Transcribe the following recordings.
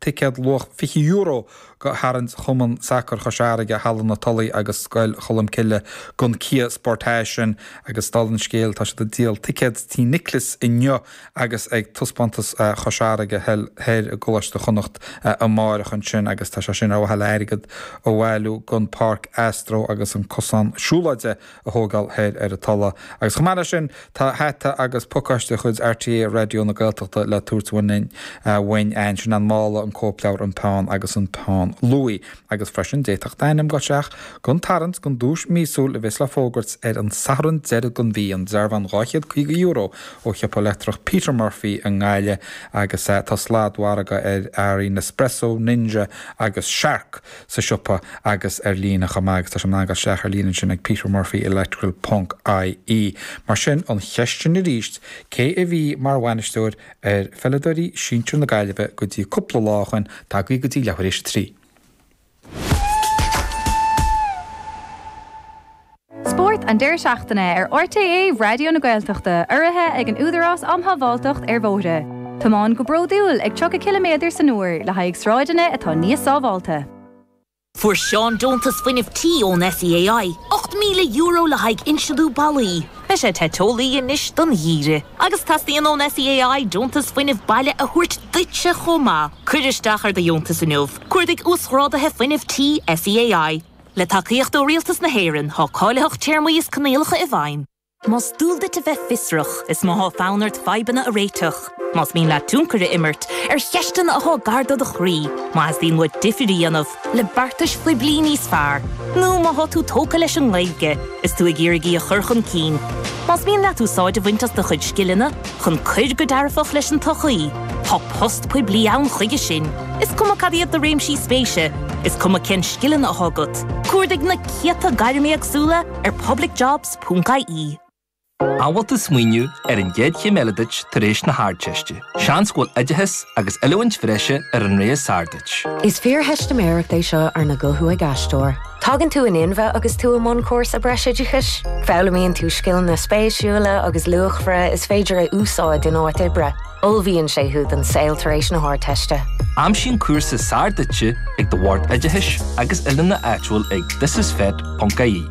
ticéad luach €20 do tharraingt Chumann Sacair Chois Fharraige, Halla na Tulaí agus Scoil Cholmcille don cia Sportage ansin agus, dála an scéil, tá siad ag díol ticéad Tí Nioclais inniu agus ag Taispeántas Chois Fharraige thoir i gColáiste Chonnacht amáireach ansin agus tá sé sin ar mhaithe le hairgead a bhailiú don Pháirc Astro agus an Cosán Siúlóide a thógáil thoir ar an Tulaigh. Agus chomh maith leis sin, tá hata agus pacáiste de chuid RTÉ Raidió na Gaeltachta le tabhairt uainn a'ainn. Sin an mála, an cóipleabhar, an peann agus an peann luaí. Agus freisin, d'fhéadfadh d'ainm a ghoil isteach don tarraingt don duais mhíosúil a bheas le fógairt ar an Satharn deiridh den mhí, an dearbhán €250 ó shiopa leictreach Peter Murphy i nGaillimh. Agus tá sladmhargadh ar earraí Nespresso, Ninja agus Shark. sa siopa agus ar líne chomh maith agus is féidir a ghoil isteach ar líne ansin ag Peter Murphy Electrical ponc IE. Mar sin, an cheist sin arís, cé a bhí mar bhainisteoir ar pheileadóirí sinsir na Gaillimhe go dtí cúpla lá ó shin? Tagaigí go dtí leathuair tar éis a trí. Spórt an deireadh seachtaine ar RTÉ Raidió na Gaeltachta urraithe ag an Údarás Um Shábháilteacht ar Bhóithre. Tiomáin go bródúil ag 30 cileaméadar san uair le haghaidh sráideanna atá níos sábháilte. Fuair Seán deontas fuinnimh tí ón SEAI, €8,000 le haghaidh insliú ballaí. Beidh sé te teolaí anois don gheimhreadh. Agus teastaíonn ón SEAI deontas fuinnimh baile a thabhairt duitse chomh maith. Cuir isteach ar do dheontas inniu. Cuardaigh Uasghráduithe Fuinnimh Tí SEAI. Le tacaíocht ó Rialtas na hÉireann, tá cáilitheacht téarmaí is coinníollacha i bhfeidhm. Más dual duit a bheith fiosrach, is má tá fonn ort fadhbanna a réiteach, más mian leat tionchar a imirt ar cheisteanna atá gar do do chroí, má theastaíonn uait difríocht a dhéanamh le beartais phoiblí níos fearr, nó má tá tú tógtha leis an nGaeilge is tú ag iarraidh í a chur chun cinn, más mian leat úsáid a bhaint as do chuid scileanna, chun cur go dearfach leis an tsochaí, tá post poiblí ann chuige sin, is cuma cad iad do réimsí spéise, is cuma cén scileanna atá agat, cuardaigh na céadta gairm éagsúla ar publicjobs.ie. An bhfuil tú ag smaoineamh ar an gcéad chéim eile duit tar éis na hArdteiste. Seans go bhfuil oideachas agus oiliúint bhreise ar an ré is Is fíortheistiméireacht é seo arna guthú ag aisteoir. Tagann tú in inmhe agus tú i mbun cúrsa breisoideachais. Foghlaimíonn tú scileanna spéisiúla agus luachmhara is féidir a úsáid in áit oibre. Ullmhaíonn sé thú don saol tar éis na hArdteiste. Aimsigh an cúrsa is fearr duitse ag do Bhord Oideachais agus Oiliúna áitiúil ag thisisfet.ie,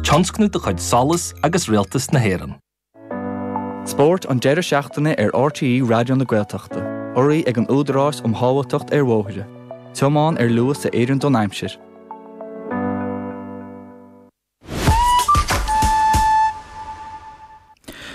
tionscnamh de chuid Solas agus Rialtas na hÉireann. Spórt an deireadh seachtaine ar RTÉ Raidió na Gaeltachta. Urraithe ag an Údarás um Shábháilteacht ar Bhóithre. Tiomáin ar luas a oireann don aimsir.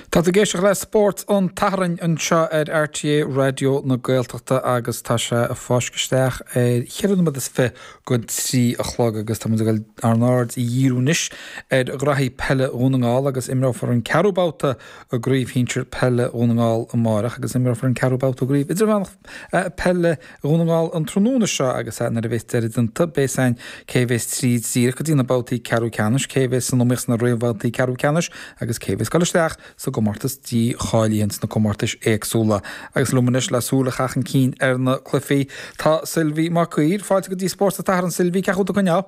Tá tú ag éisteacht le Spórt an tSathairn anseo ar RTÉ Raidió na Gaeltachta agus tá sé ag fáisceadh isteach ar cheithre nóiméad is fiche go trí a chlog agus tá muid ag goil ár n-aird a dhíriú anois ar ghraithí peile Dhún na nGall agus imreofar an ceathrú babhta i gCraobh Shinsir Peile Dhún na nGall amárach agus imreofar an ceathrú babhta i gCraobh Idirmheánach Peile Dhún na nGall an tráthnóna seo agus nuair a bheas deireadh déanta beidh a fhios againn cé a bheas tríd díreach go dtí na babhtaí ceathrú ceannais cé a bheas san iomaíocht sna réamhbhabhtaí ceathrú ceannais agus cé a bheas dul isteach sa gcomórtas dícháilíocht sna comórtais éagsúla. Agus liom anois le súil a chaitheamh chun cinn ar na cluifí, tá Sylvi Mac Uidhir. Fáilte go dtí Spórt an tSathairn, Sylvi. Cén chaoi a bhfuil tú ag coinneáil?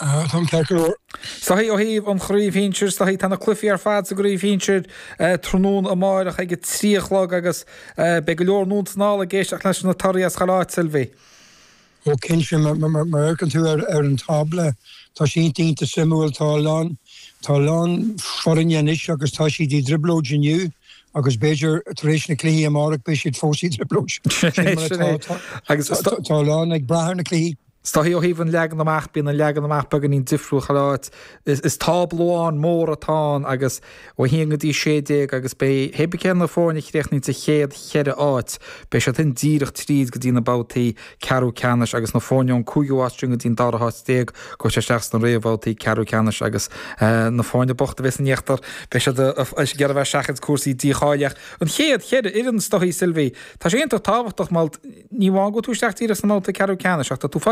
Ah, táim ceart go leor. Is dóichí ó thaobh an chraobh shinsir, is dóichí tá na cluifí ar fad sa gcraobh shinsir tráthnóna amáireach ag a trí a chlog agus beidh go leor i nDún na nGall ag éisteacht leis na torthaí as chuile áit, Sylvi. Go cinnte, mar a fheiceann tú ar an tábla, tá sé ionta suimiúil. Tá a lán, tá a lán foirne anois agus tá siad i dtrioblóid inniu agus b'fhéidir tar éis na cluichí amárach beidh siad fós i dtrioblóid. Sin mar atá. Agus tá a lán ag brath ar na cluichí. Is dóichí ó thaobh an leagan amach, bíonn an leagan amach beagáinín difriúil chuile áit. Is tábla amháin mór atá ann agus Ó 1 go dtí 16 agus beidh hé bith cé na foirne a chríochnaíonn sa chéad cheithre áit. Beidh siad sin díreach tríd go dtí na babhtaí ceathrú ceannais agus na foirne ón 5ú áit sin go dtí an dara háit déag gabhfaidh siad isteach sna réamhbhabhtaí ceathrú ceannais agus na foirne bochta a bheas san íochtar beidh siad ag iarraidh a bheith ag seachaint cúrsaí dícháilíochta an chéad cheithre fhoireann is dóichí Sylvie tá sé iontach tábhachtach mar ní amháin go bhfuil tú isteach díreach sna mbabhtaí ceathrú ceannais ach tá tú